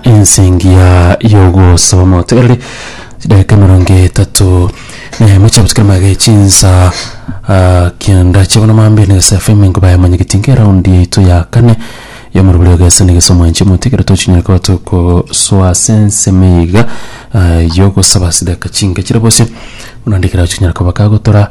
ensingia y'ogosaba omotegereri chidaika emerongo etato eh, mocha busikira maega echinsa ah, kianda chiabona mambe na gesa fm ingo baya manya gitinga eraundi yaito ya kane yomorobori ogesa na gesa omwanchi omotigere tochinyore koba tokoswa ase ensemo iga ah, yogosaba sidaka chinke chire bosio buna ndikira chinyore koba kagotora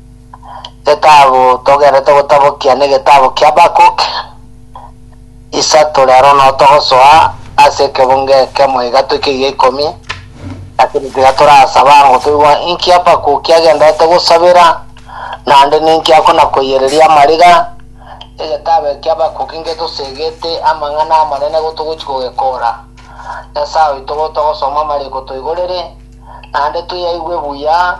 Getabu togerete gotabokia negetabu kia Habakkuk. Isato rero no togosoa ase ekebungo ekemo iga toike eria ikomi. Lakini tiga torasaba ango toigwa inki Habakkuk agenderete gosabera naende ninki akona koiyereria amariga. Egetabu eke kia Habakkuk ngetosegete amang'ana amanene go togochi kogekora. Nyasae oito gotogosoma amariko toigorere naende toyaigwe buya.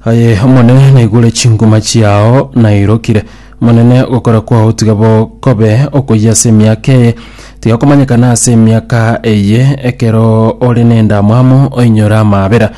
Aye Omonene, naigure chinguma chiao, nairokire. Omonene, ogokora kwao tiga bo kobe okoyia ase emiaka eye, tiga komanyekana ase emiaka eye, ekero ore nendamwamu oinyore amaabera.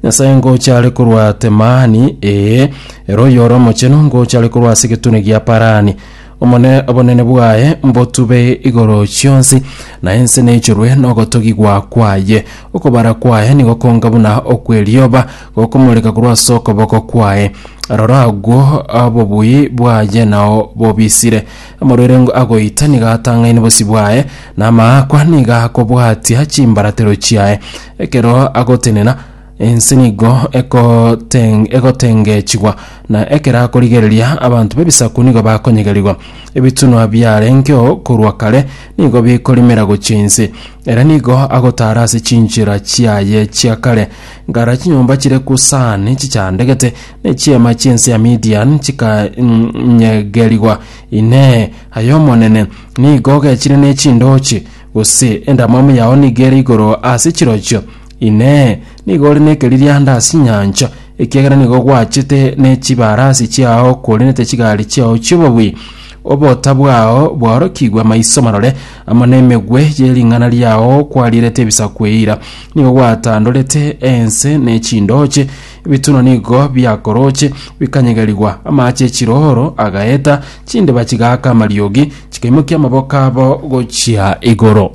Nyasae ngocha are korwa Temani, ee, ere oyore omochenu, ngocha are korwa ase egetune gia Parani. Omone obonene bwaye mbotube igoro chionsi, na ense neichorwe nogotogigwa kwaye. Okobara kwaye nigo konga buna okw'erioba, gokomoreka korwa ase okoboko kwaye. Rora agwo obobui bwaye nao bobisire, amaruerengo agoita nigo atang'aine bosio bwaye, na amaakwa nigo akobwatia chimbaratero chiaye. Ekero agotenena, Ense nigo ekoteng- egotengechigwa, na ekero akorigereria, abanto b'ebisaku nigo bakonyegerigwa. Ebitunwa biarengeo korwa kare nigo bikorimera gochia inse. Ere nigo agotaara ase chinchera chiaye chia kare. Ngara chinyomba chire Kusani chichandegete, na echiema chi'ense ya Midian chikanyegerigwa. Inee! Aye Omonene, nigo ogechire ne chindooche? Gose endamwamu yao nigo ere igoro ase chirochio? Inee! Nigo ore nekeririanda ase inyancha, ekiagera nigo gwachete ne chibarasi chiao okwerenete chigari chiao chi'obobui? Obota bwao bwaorokigwe amaiso marore, amo nemegwe ye ring'ana riao kwarierete ebisaku eira. Nigo gwatandorete ense ne chindooche, ebituna nigo biakorooche, bikanyegerigwa. Amaache echirooro agaeta, chindeba chigaaka amariogi, chikaimokia amaboko abo gochia igoro.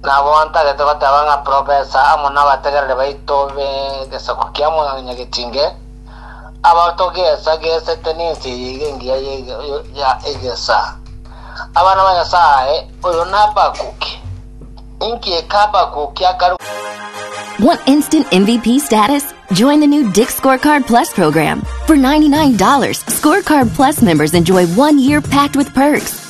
Nabo ntarete goteba ng'a profesa amo nabategereri baito b'egesaku kia Mwanyagetinge, abao togeesa geesete nense eye iga engiya ya egesa. Abana ba Nyasae, oyo na Habakuki. Inki eke Habakuki akarwa? Want instant MVP status? Join the new Dick Scorecard Plus program. For $99, Scorecard Plus members enjoy one year packed with perks,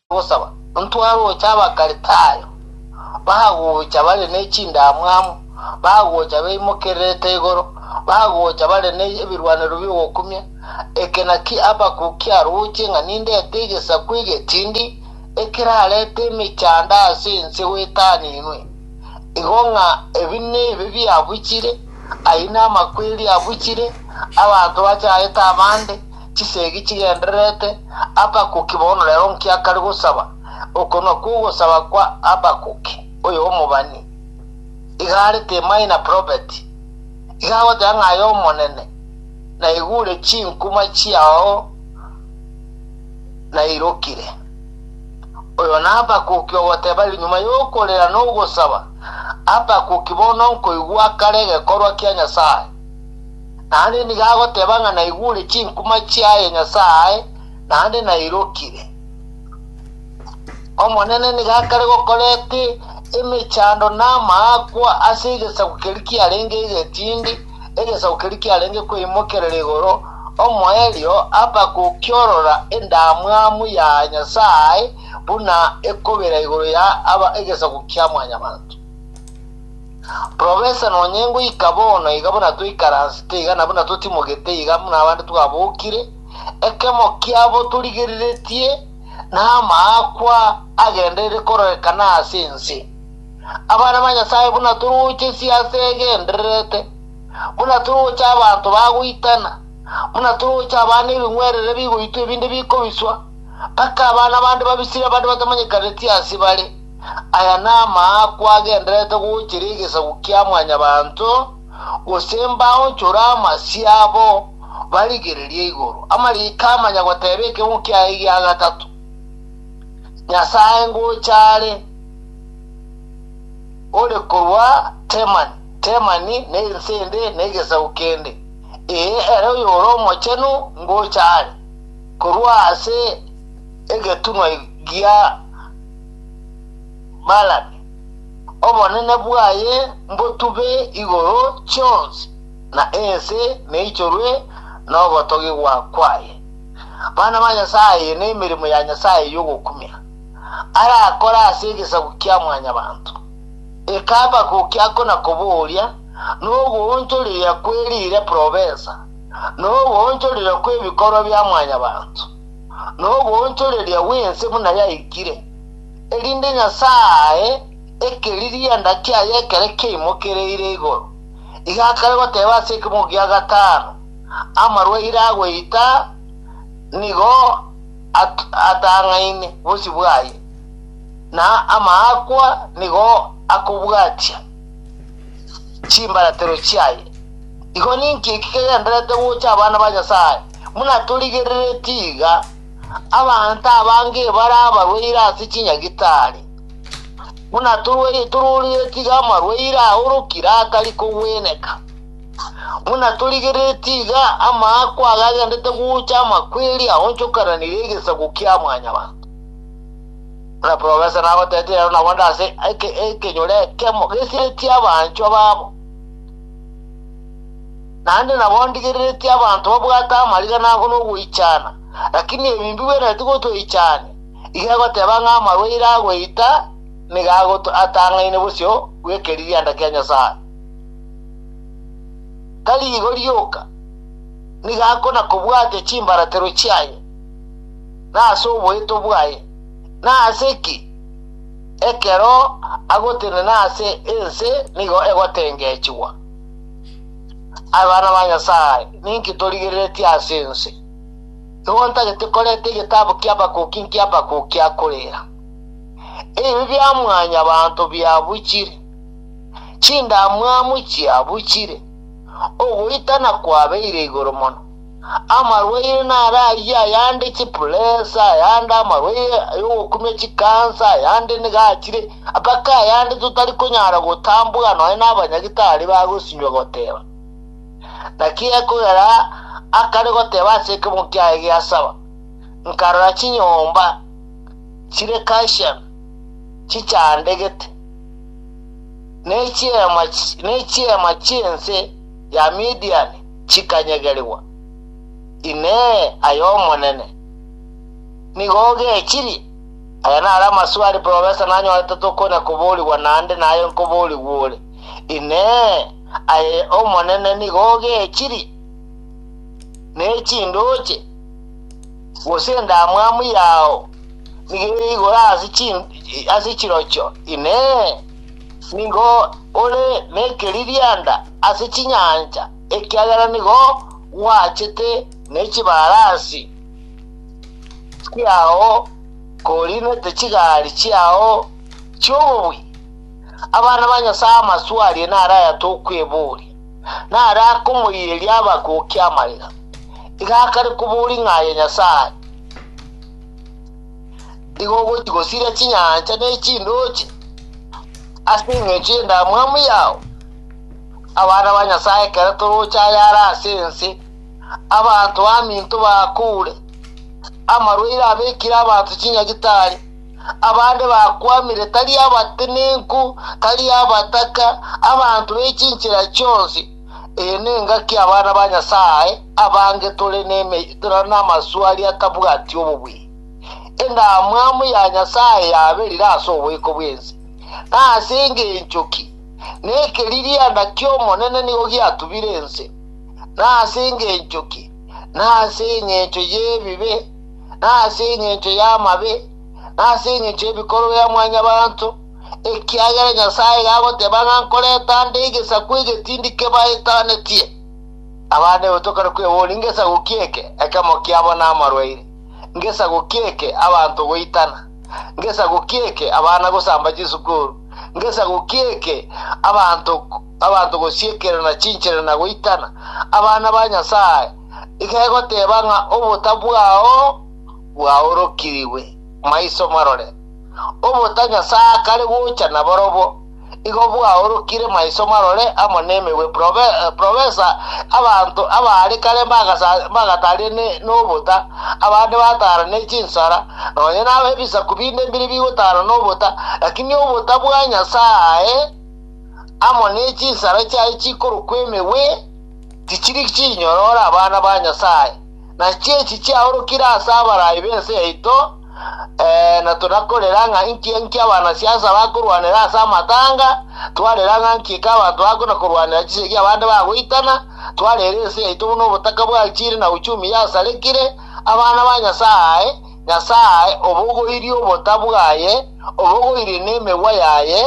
Gosaba. Ntwaroche Abakritayo bagocha bare ne chindamwamu, bagocha beimokererete igoro, bagocha bare ne ebirwanerio bi'ogokumia, eke naki Habakkuk kiarochie ng'a nindete egesaku egetindi ekerarete emechando ase ense gwetaninwe, igo ng'a ebi nebe biabuchire, ayio namakweri abuchire, abanto bachaete abande, chisegi chigendererete Habakuki bono rero nkiakare gosaba, okonwa kw'ogosaba kwa Habakuki oyo omobani, iga are te minor prophet, iga agoteba ng'a aye Omonene naigure chinkuma chiao nairokire. Oyo na Habakuki ogoteba ere nyuma y'okorera na ogosaba, Habakuki bono nkoigwa akare egekorwa kia Nyasae. naende nigo agoteba ng'a naigure chinkuma chiaye Nyasae, naende nairokire. Omonene nigo akare gokorete emechando na amaakwa ase egesaku keria kiarenge egetindi, egesaku keria kiarenge kweimokerera igoro, omoerio apa gokiorora endamwamu ya Nyasae buna ekobera igoro ya aba egesaku kia Mwanyabaanto. Profesa nonyengwe ika bono iga buna twaikaransete iga na buna totimogete iga buna abande twabokire, ekemo kiabo torigeriretie namaakwa agenderere kororekana ase ense. Abana ba Nyasaye buna toroche siasa egendererete, buna toroche abanto bagoitana, buna toroche abana ebing'werere bigoitwa ebinde bikobiswa, mpaka abana bande babisire abande batamanyekanetie ase bare. Aya namaakwa agendererete gochera egesaku kia mwanyabanto, gose mbaonchore amasio abo barigereria igoro. Amariiko amanya goteba ekemo kiaye gia gatato, Nyasae ngocha are ore korwa Temani, Temani na ense ende na egesaku kende, ee, ere oyore omochenu ngocha are korwa ase egetunwa gia Malaki, Obonene bwaye mbotube igoro chionsi, na ense neichorwe nogotogigwa kwaye. Abana ba Nyasaye nemeremo ya Nyasaye yogokumia, arakore ase egesaku kia mwanyabanto. Eka Habakuki akona koboria nogoonchoreria kwe riire probensa, nogoonchoreria kwebikorwa bia mwanyabanto. noboonchoreria bw'ense buna yaikire, erinde Nyasae ae ekeririanda kiaye ekero kiaimokereire igoro, igakare goteeba ase ekemogo gia gatano, Amarwaire agoita nigo atang'aine bosio bwaye, na amaakwa nigo akobwatia chimbaratero chiaye. Igo ninki eki kegendererete gocha abana ba Nyasae? Buna torigereretie iga, abanto abange ebara abarwaire ase chinyagitari, buna torwa- tororiretie iga amarwaire aorokire atari kogweneka, buna torigereretie iga amaako aya agendete gocha amakweri aonchokananire egesaku kia Mwanyabanto. Buna profesa nagoteete rero nabo nde ase eke- ekenyoro ekemo gesiretie abanchwa babo. Naende nabo ndigereretie abanto babwate amarigena ango nogoichana, lakini ebi mbigwenereti gotweichania, iga egoteba ng'a amarwaire agoita nigo agoatang'aine bosio bw'ekeririanda kia Nyasae. Tari igo rioka, nigo akona-kobwatia chimbaratero chiaye, na ase oboeto bwaye, na ase ki ekero agotenena ase ense nigo egotengechigwa. Abana ba Nyasae, ninki torigereretie ase ense? Nigo ntagete korenta egetabu kia Habakuki inki Habakuki akorera? Ebibe bia mwanyabanto biabuchire, chindamwamu chiabuchire, ogoitana kwabeire igoro mono. Amarwaire naro ayio, ayande chipuresa, ayande amarwaire yogokumia chikansa, ayande nigo achire, mpaka ayande totari konyara gotambora nonya nabanyagitari bagosinywa goteba. Naki ekogera akare goteba ase ekemogo kiaye gia saba, nkarora chinyomba chire Kashan chichandegete, ne chiema, ne chiema chi'ense ya Midiani, chikanyegerigwa, Inee, ay'Omonene nigo ogechirie? Aya naro amaswali bwebabisa nanyorete tokonya koborigwa naende naye nkoborigwe ore, Inee, ay'Omonene nigo ogechirie? Ne chindooche, gose endamwamu yao nigo ere igoro ase chirochio, Inee, Nigo ore nekeririanda ase chinyancha, ekiagera nigo gwachete ne chibarasi chiao korinete chigari chiao chi'obobui. Abana ba Nyasae amaswe aria nare ayatokweboria, nare akomoiyeria abagokia amariga. Iga akare koboria ng'a aye Nyasae. Igo ogochia gosiria chinyancha ne chindoche ase engencho y'endamwamu yao. Abana ba Nyasae ekero toroche ayare ase ense, abanto baminto bakuure, amarwaire abekire abanto chinyagitari, abande bakwamire tari abatenenku, tari abataka, abanto be chinchera chionsi. Eye nengaki abana ba Nyasae abange tore nemeitera na amaswali atabwati obobui. Endamwamu ya Nyasae yaberire ase oboiko bw'ense. Nase engencho ki? Nekeririanda ki'Omonene nigo giatubire ense. Nase engencho ki? Nase engencho y'ebibe, nase engencho y'amabe, nase engencho y'ebikorwa bia mwanyabanto, ekiagera Nyasae iga agoteba ng'a nkoreta nde egesaku egetindi kebaetanetie. Abande gotokana kweboria ngesaku ki eke, ekemo kiabo namarwaire, ngesaku ki eke abanto goitana, ngesaku ki eke abana gosamba chisukuru, ngesaku ki eke abanto abanto gosiekerana chinchera na goitana. Abana ba Nyasae iga egoteba ng'a obota bwao bwaorokirigwe maiso marore. Obota Nyasae akare gocha nabarobwo, igo bwaorokire maiso marore amo nemegwe profesa abanto abaare kare mbagatarie nobota, abande batara ne chinsara, nonye nabo ebisaku binde mbiri bigotara nobota, lakini obota bwa Nyasae amo ne chinsara chiaye chikorokwa emegwe tichiri chinyorore abana ba Nyasae. Nachi echi chiaorokire ase abarai b'ense yaito, Eeno, torakorera ng'a inki enki abanasiasa bakorwanera ase amatanga, twarera ng'a nki eke abanto bakona korwanera chisegi abande bagoitana, twarera ense yaito buna obotaka bwachire na uchumi yasarekire, abana ba Nyasae, Nyasae obogoirie obota bwaye, obogoirie nemegwa yaye,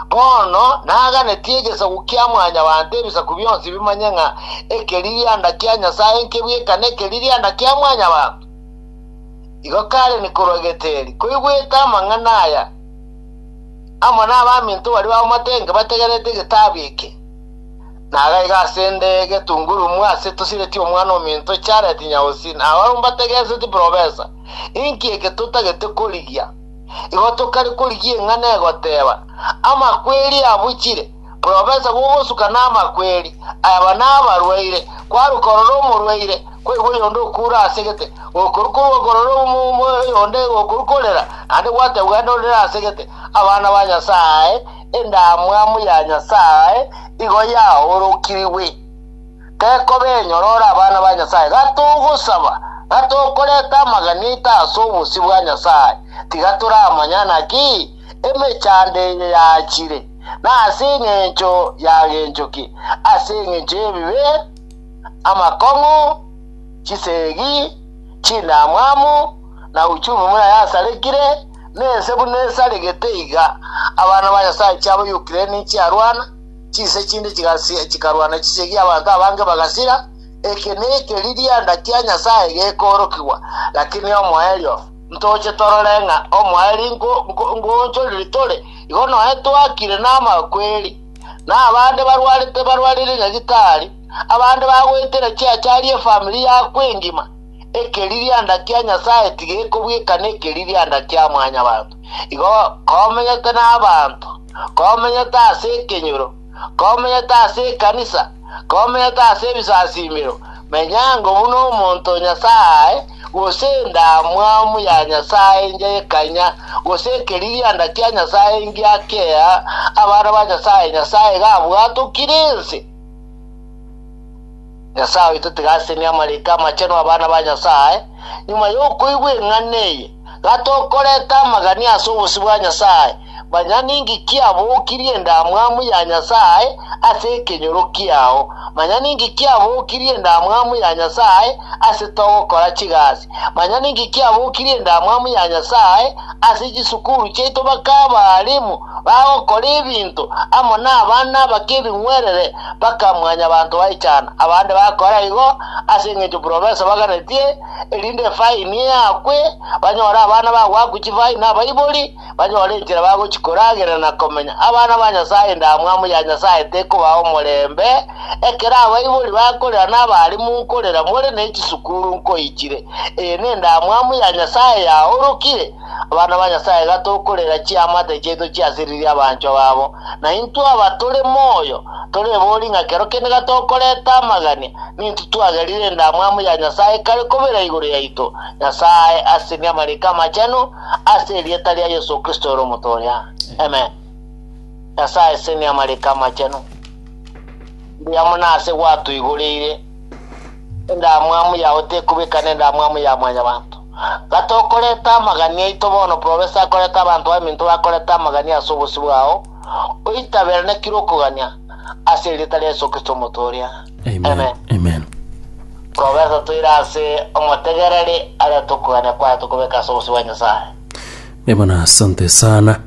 bono naganetie egesaku kia Mwanyabaanto ebisaku bionsi bimanye ng'a ekeririanda kia Nyasae nkebwekane ekeririanda kia Mwanyabaanto. Igo Karen korwa Geteli koigwete amang'ana aya, amo nabaminto baria bamotenge bategerete egetabu eke, nagaiga ase ende getungurumu ase tosireti omwana ominto Jared Nyausi na ababwo mbategereseti Profesa, Inki eke totagete korigia? Igo tokare korigia eng'ana egoteba, Amakweri abuchire. Porofesa bw'ogosuka namakweri, aba nabarwaire, kwaruka ororo omorwaire, kwaigwa oyonde okuura ase egete, gokoru korwa okorora oyonde gokoru korera, naende gwategwa genda orere ase egete. Abana ba Nyasae, endamwamu ya Nyasae igo yaorokirigwe. Tekoba enyoro ore abana ba Nyasae, gatogosaba, gatokoreta amaganeto ase obosio bwa Nyasae, tiga toramanya naki, emechando eye yaachire, na ase engencho y'agencho ki? Ase engencho y'ebibe, amakong'u, chisegi, chindamwamu, na uchumi buna yasarekire, na ense buna esaregete iga. Abana ba Nyasae chiabo y'Ukraine chiarwana, chinse chinde chigasi- chikarwana chisegi, abanto abange bagasira. Eke nekeririanda kia Nyasae gekoorokigwa, lakini omoerio. Ntoche torore ng'a omwaeri ngoonchorire tore igo nonya twakire namakweri, na abande barwarete barwarire nyagitari, abande bagoetera chiachari efamiri yakwo engima. Ekeririanda kia Nyasae tigekobwekana ekeririanda kia mwanyabanto. Igo komenyete nabanto, komenyete ase ekenyoro, Komenyete ase ekanisa, komenyete ase ebisasimero, menyango buna omonto o Nyasae, gose endamwamu ya Nyasae engiya y'ekanya, gose ekeririanda kia Nyasae engiya kea abana ba Nyasae, Nyasae iga abwatokire ense. Nyasae oito tiga asenie amariiko amachenu 'abana ba Nyasae, nyuma y'okoigwa eng'ana eye. gatokorete amagania ase obosio bwa Nyasae, manya ninki kiabokirie endamwamu ya Nyasae ase ekenyoro kiao, manya ninki kiabokirie endamwamu ya Nyasae ase togokora chigasi, manya ninki kiabokirie endamwamu ya Nyasae ase chisukuru chiaito baka abalimu bagokora ebinto amo nabana abake ebing'werere baka mwanyabanto baechana, abande bakora igo ase engencho profesa baganetie erinde efaini eakwe, banyore abana bagoakwa chifaini na abaibori, banyore enchera bagochia koragerera na komenya. Abana ba Nyasae endamwamu ya Nyasae tekobao omorembe, ekero abaibori bakorera na abarimu nkorera more ne chisukuru nkoichire. Eye nendamwamu ya Nyasae yaorokire. Abana ba Nyasae iga tokorera chiamate chiaito chiasiririe abanchwa babo, na intwe aba tore moyo torebori ng'a kero kende gatokoreta amagania, nintwe twagerire endamwamu ya Nyasae kare kobera igoro yaito, Nyasae asesenie amariiko amachenu ase erieta ria Yeso Kristo ere Omoto oria. Amen. Nyasae asesenie amariiko amachenu. Mbuya mono ase gwatoigoreire. Endamwamu yao tekobekana endamwamu ya mwanyabanto. Gati okoreta amagania aito bono profesa akoreta abanto baminto bakorete amagania ase obosio bwao, oitabera na kire okogania, ase erieta ria Yeso Kristo Omoto oria. Amen. Amen. Profesa toire ase omotegereri arete okogania kwaye tokobeka ase obosio bwa Nyasaye. Ebona asante sana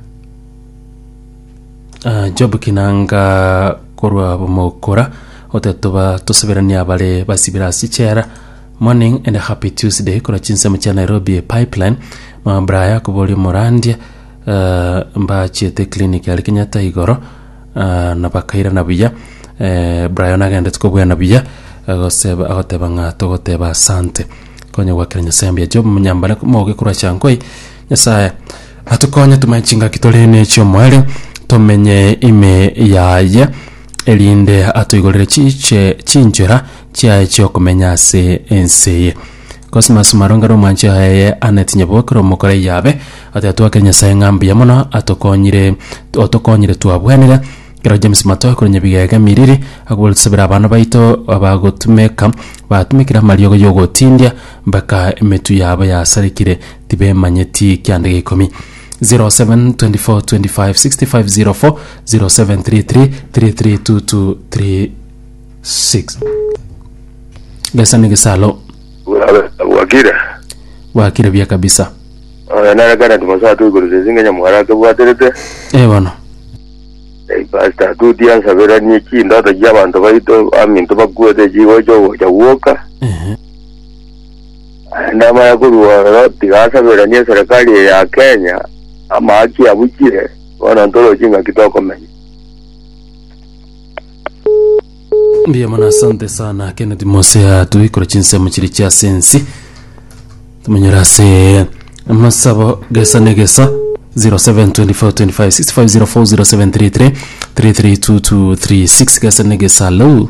Ah, job kinanga korwa bomokora ote toba toseberania abare basibira ase chera Morning and happy Tuesday korwa chinsemo chia Nairobi pipeline mama Brian akobori omorandia eh, mbachiete clinic yari Kenyatta igoro eh, na bakairana buya eh, Brian agendete kobwena buya agoseba agoteba ng'a togoteba asante konye gwakera Nyasaye mbuya Job Munyambane moge korwa Chankoi Nyasaye atukonye tumanye chingaki tore ne chiomoerio tomenye ime yaye erinde atoigorere chiche chinchera chiaye chi'okomenya ase ense eye. Cosmas Malonga na omwancho yaye Annet Nyebokera omokora Iyabe ati atwakire Nyasaye ng'a mbuya mono atokonyire otokonyire twabwenire kero James Matoe korwa Nyebigega Emiriri akobwate tusabere abana baito abagotumeka batumekire amariogo y'ogotindia mpaka emetwe yabo yasarekire tibemanyeti kianda gia ikomi. 0724256504 Gesa ne Gesalo. Bwa- bwakire Bwakire bia kabisa. oyo nare kenneth mosato igoro sesinga nyamwara akebwaterete Eh bono. Eh, pastor tuti ansaberanie chindoto chiabanto baito aminto bakwete chigocha ogocha gwoka Ehe. Naende amaya korwa oro tiga asaberanie eserekari eye ya Kenya amahaki abuchire, bono ntoroche ing'aki tokomenya. Mbuya mono asante sana Kenneth Mosea tuikora chinsemo chiri chia ase ensi tumanyora ase amasabo gesa ne gesa 0724256504 0733 3322236 gesa ne gesa lou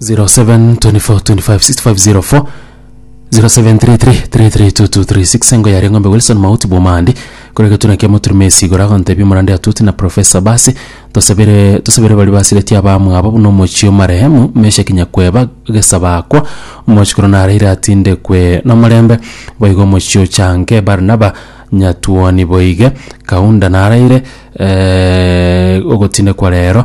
0724256504 0733332236 engo yaria ng'ombe wilson mauti bw'omahandi kore egetuna kia moturume ase igoro agontebia omorande atwete na profesa basi tosabere tosabere baria basiretie abamwabo buna omochie omarehemu meshaki nyakweba gesabakwa omochikoro naraire atindekwe nomorembe boigo omochie ochanke barnaba nyatuoni boige kaunda naraire ogotindekwa rero.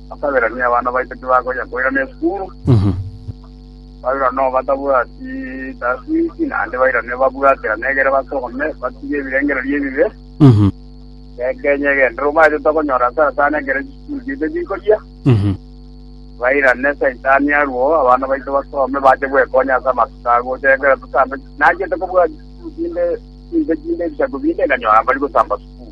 Ababerania abana baito tibakonya koirana esukuru, bairane oo batabwati taswichi, naende bairane babwaterane egere basome, batige ebirengererio ebibe. Gekenye egenderero omaete tokonyora asara sana ekero chisukuru chiaito chikoria. Bairane Saitani arue oo, abana baito basome bache gwekonya ase amatuko agocha, ekero totambe nachiete kobua chisukuru chinde chinde chinde ebisaku binde, nkanyora mbari gotamba sukuru.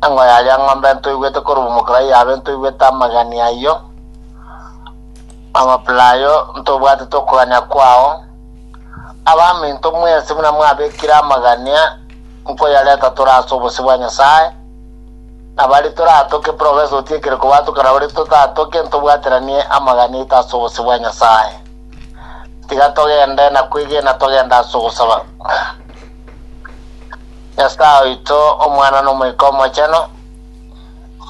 Ang'o yaria ng'ombe ntoigwete korwa omokora yabe ntoigwete amagani ayio? Amapera ayio ntobwatete okogania kwao? Abaminto mwensi buna mwabekire amagania nkoyareta tore ase obosio bwa Nyasae, na baria toratoke profesa otiekire kobatoka na baria totatoke ntobwateranie amagani aito ase obosio bwa Nyasae. Tiga togende na kwegena togende ase ogosaba. Nyasae oito, Omwana, na Omoika Omochenu,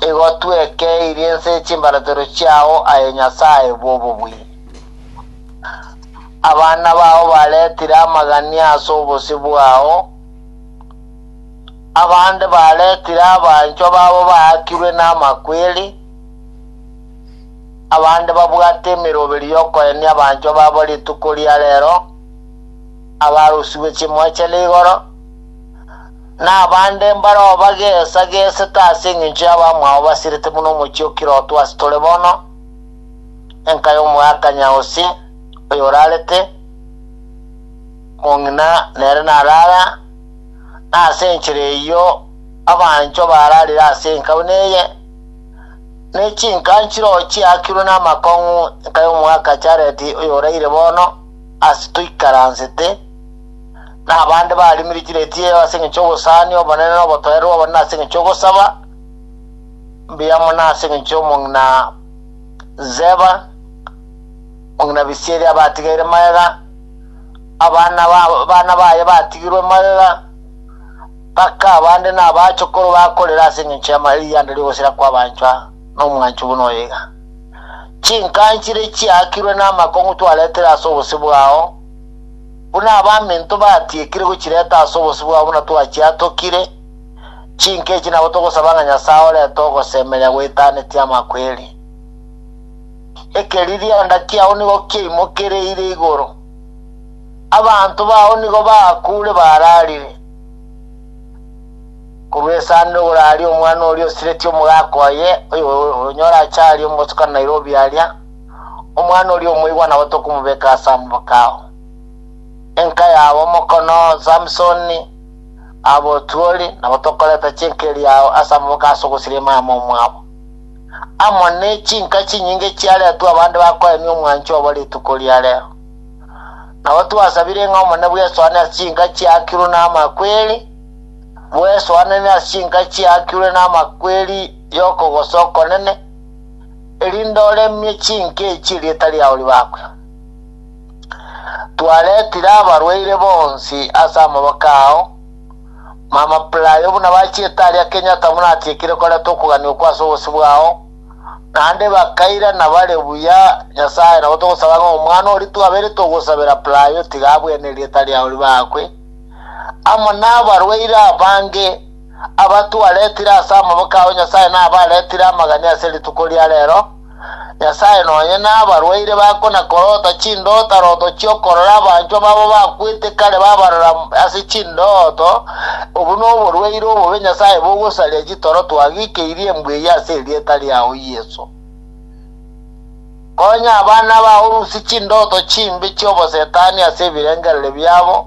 igo twekeirie ense chimbaratero chiao, aye Nyasae bw'obobui. Abana bao baretire amagania ase obosio bwao, abande baretire abanchwa babo baakirwe namakweri, abande babwate emeroberi y'okoenia abanchwa babo rituko ria rero, Abarusigwe chimwechero igoro, na abande mbare oo bageesa geesete ase engencho y'abamwabo basirete buna omochie o Kiroto ase tore bono, enka y'omoeakanya Hosi, oyo orarete, mong'ina nere narara, na ase enchera eyio abanchwa bararire ase enka buna eye, ne chinka nchirochio chiaakirwe namakong'u enka y'omoeaka Jaredi oyo oraire bono, ase toikaransete, na abande barimire chireti eye ase engencho y'obosani obonene na obotoereru obonene ase engencho y'ogosaba mbuya amo na ase engencho y'omong'ina Zeba, mong'ina Bisieri abatigaire magega, abana ba- bana baye batigirwe magega, mpaka abande na abachokoro bakorera ase engencho y'ama- erianda ri'ogosira kw'abanchwa, nomwancho buna oyo iga. Chinkanchire chiaakirwe namakong'u twaretere ase obosio bwao, buna abaminto batiekire gochireta ase obosio bwao buna twachiatokire, chinka echi nabo togosaba ng'a Nyasae orete ogosemeria gweitanetie amakweri. Ekeririanda kiao nigo kiaimokereire igoro, abanto bao nigo bakuure bararire. Korwa esande igoro aria omwana oria osiretie omogaka oye, oyo onyore achaarie omosuka Nairobi aria, omwana oria omoigwa nabo tokomobeka ase amaboko ao. Enka yabo omokono Samsoni, abotuori, nabo tokoreta chinka eria ao ase amaboko ase ogosiria omama omwabo. Amo ne chinka chinyinge chiaretwe abande bakoenia omwanchi obo rituko ria rero. Nabo twasabire ng'a Omonene bw'esoane ase chinka chiakirwe namakweri, Mwesoanane ase chinka chiaakirwe namakweri y'okogosa okonene, erinde oremie chinka echi erieta riao ribakwe. Twaretire abarwaire bonsi ase amaboko ao, mama Playo buna bachiete aria Kenyatta buna atiekire koreta okogania okwo ase obosio bwao, naende bakairana bare buya Nyasaye nabo togosaba ng'a omwana oria twabeire togosabera Playo tiga abwene erieta riao ribakwe, amo nabarwaire abange, abatwaretire ase amaboko ao Nyasae nabaretire amagani ase rituko ria rero, Nyasae nonye nabarwaire bakona korota chindoto aroto chiokorora abanchwa babo bakwete kare babarora ase chindoto, obu noborwaire obobe Nyasae bogosaria chitoro twagikeirie mbweyia ase erieta riao Yeso. Konya abana bao rusie chindoto chimbe chi'obosetani ase ebirengereri biabo,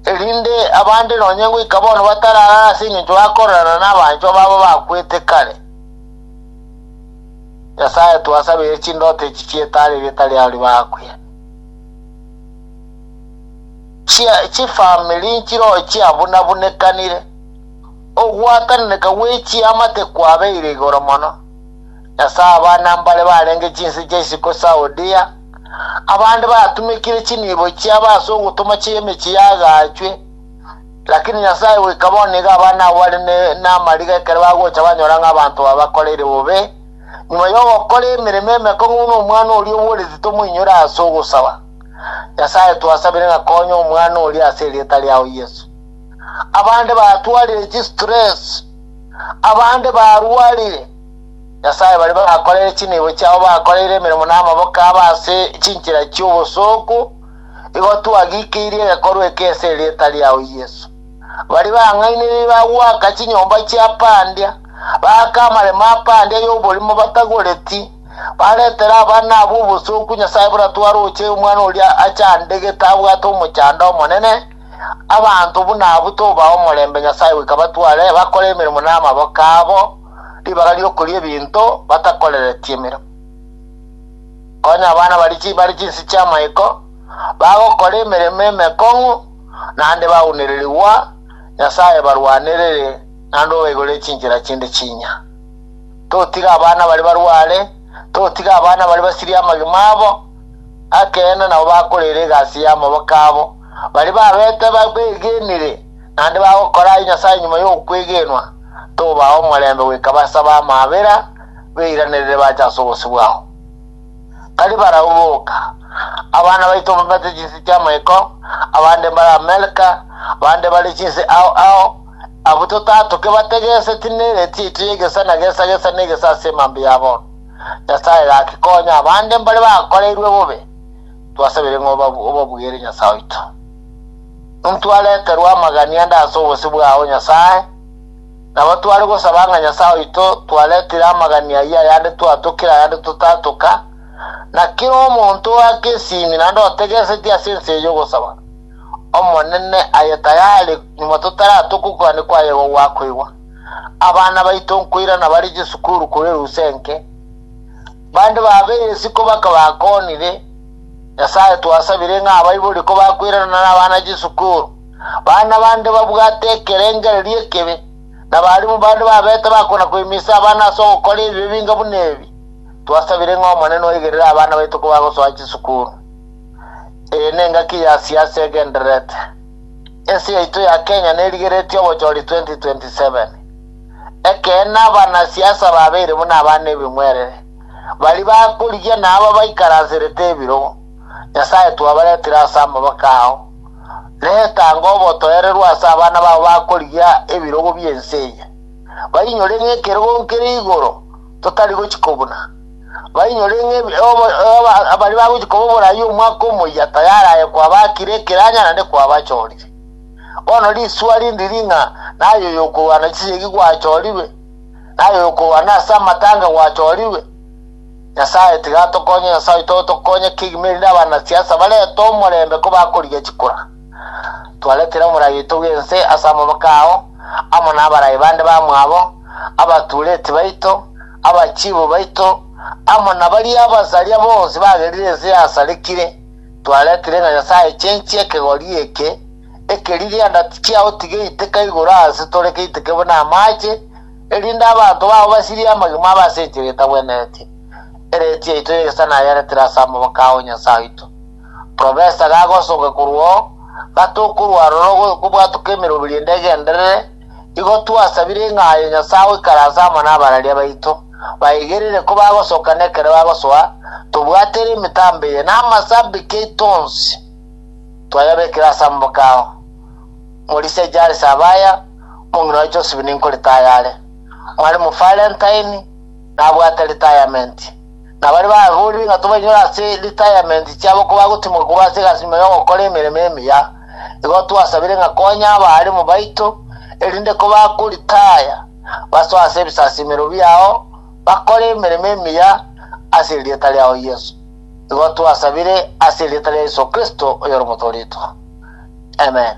erinde abande nonya ngoika bono batararara ase engencho bakorerana nabanchwa babo bakwete kare. Nyasae twasabire chindoto echi chietare erieta riao ribaakwiere. Chia- Chifamiri nchirochia abunabunekanire, ogwatananeka gwe chiamate kwabeire igoro mono. Ase abana mbare barenge chinse chia isiko Saudia, abande batumekire chinibo chiabo ase ogotoma chia emechie yagaachwe, lakini Nyasae goika bono nigo abana abo bare namariga ekero bagocha banyora ng'a abanto aba bakoreire bobe nyuma y'ogokora emeremo emekong'u buna omwana oria oboreti tomoinyore ase ogosaba. Nyasae twasabire ng'a konya omwana oria ase erieta riao Yesu. Abande batwarire chistress, abande barwarire, Nyasae baria bakorere chinibo chiabo bakoreire emeremo namaboko abo ase chinchera chi'obosooku, igo twagikeirie egekorwa eke ase erieta riao Yeso. Baria bang'ainereiri bagwaka chinyomba chi'apandia, baaka amaremo apandia y'oborimo batagoreti, baretere abana abo obosooku, Nyasae buna twaroche omwana oria achandegete abwate omochando omonene, abanto buna abwo tobaha omorembe Nyasae goika batware bakore emeremo namaboko abo, ribaga ri'okoria ebinto batakoreretie emero. Konya abana baria chibare chinsi chi'amaiko bagokora emeremo emekong'u, naende baunererigwa Nyasae ebarwanerere naende obaigorere chinchera chinde chinya. Totiga abana baria barware, totiga abana baria basirie amagima abo, ekeene nabo bakoreera egasi y'amaboko abo, Baria babete bakwegenire, naende bagokora aye Nyasae nyuma y'okwegenwa, tobaa omorembe goika base ab'amabera beiranerere bache ase obosio bwao. Tari barabwo boka, abana baito mbabete chinse chi'amaiko, abande mbare Amerika, bande bare chinse ao ao, abwo totatoke bategeseti n'ereti yaito y'egesa na gesa gesa n'egesa ase emambe ya bono. Nyasae gaki konya abande mbare bakoreirwe bobe. Twasabire ng'a obabwere Nyasae oito. Intwe areterwe amagani ande ase obosio bwao, Nyasae, nabo tware gosaba ng'a Nyasae oito twaretire amagani ayio ayande twatokire ayande totatoka, na kera omonto oake esimi naende otegesetie ase ense eye ogosaba Omonene aye tayari nyuma totaratoka okogania kwaye igo gwakoigwa. Abana baito nkoirana bare chisukuru korwa erusa enke. Bande bab'egeesi kobaka bakoonire, Nyasae twasabire ng'a abaibori kobakweranana nabana chisukuru, bana bande babwate ekerengererio ekebe, nabarimu bande babete bakona koimisa abana ase ogokora ebi ebinga buna ebi. Twasabire ng'a Omonene oigerere abana baito kobagosoa chisukuru. Eye nengaki ya siasa egendererete. Ense yaito ya Kenya nerigeretie obochori 2027. Ekeene, abanasiasa babeire buna abana ebing'werere, baria bakorigia na aba baikaranserete ebirogo. Nyasae twabaretire ase amaboko ao, na etange obotoereru ase abana bao bakorigia ebirogo bi'ense eye, bainyore ng'a ekerogo nkere igoro totari gochia kobuna, bainyore ng'a ebi- obo- obo- abaria bagochia koba oborai omwaka omoyia tayari aye kwabakire ekeranyanane kwabachorire. Bono risuha rindi ring'a naye oyokorwana chisegi gwachorigwe, naye oyokorwana ase amatanga gwachorigwe. Nyasae tiga atokonye Nyasae oito otokonye kegima erinde abanasiasa barete omorembe kobakorigia chikura. Twaretire omorai oito bw'ense ase amaboko ao, amo nabarai bande bamwabo, abatureti baito, abachiibu baito, amo nabaria abasaria bonsi bagerire ense yasarekire. Twaretire ng'a Nyasae chenchi ekegori eke, ekerigianda tichiao tiga eiteka igoro aase tore keiteke buna amache, erinde abanto bao basirie amagima abe ase enchera etabwenereti. Ereeti yaito y'egesare nayaretire ase amaboko ao Nyasae oito. Profesa gagosoke korwa oo, gatokorwa aroro gokobwatoka emeroberi ende egenderere, Igo twasabire ng'a aye Nyasae agoikaranse amo n'abararia baito, baigerere ko bagosoka na ekero bagosoa, tobwate ere emitambo eye, na amasabiki aito onsi twayabekire ase amaboko ao. Morisia Jairisi abaya, omong'ina wa Joseph ninko ritaya are. Mwalimu Valentine nabwate ritayamenti. na baria bagorirwe ng'a tobainyore ase retirement chiabo kobagotimwa korwa ase egasi nyuma y'ogokora emeremo emiya, igo twasabire ng'a konya abaaremu baito, erinde kobakoritaya basoe ase ebisasimero biao bakore emeremo emiya ase erieta riao Yeso. Igo twasabire ase erieta ria Yeso Kristo, oyore omotoretwa. Amen.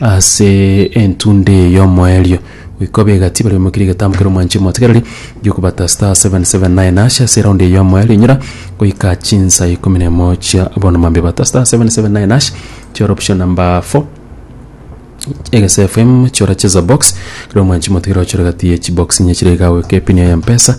Ase entunda eye y'omoerio goika obe egati baria baimokeire egetambo keria omwanchire omotegereri gi'okobata star seven seven nine hash ase eraundi eye y'omoerio inyora goika chinsa ikomi na emo chia bono mambia bata star seven seven nine hash chiore option number four egese FM chiore cheza box kero omwanchire omotegereri ochore egati ye chibox inye chire iga goika epini yaye ya mpesa.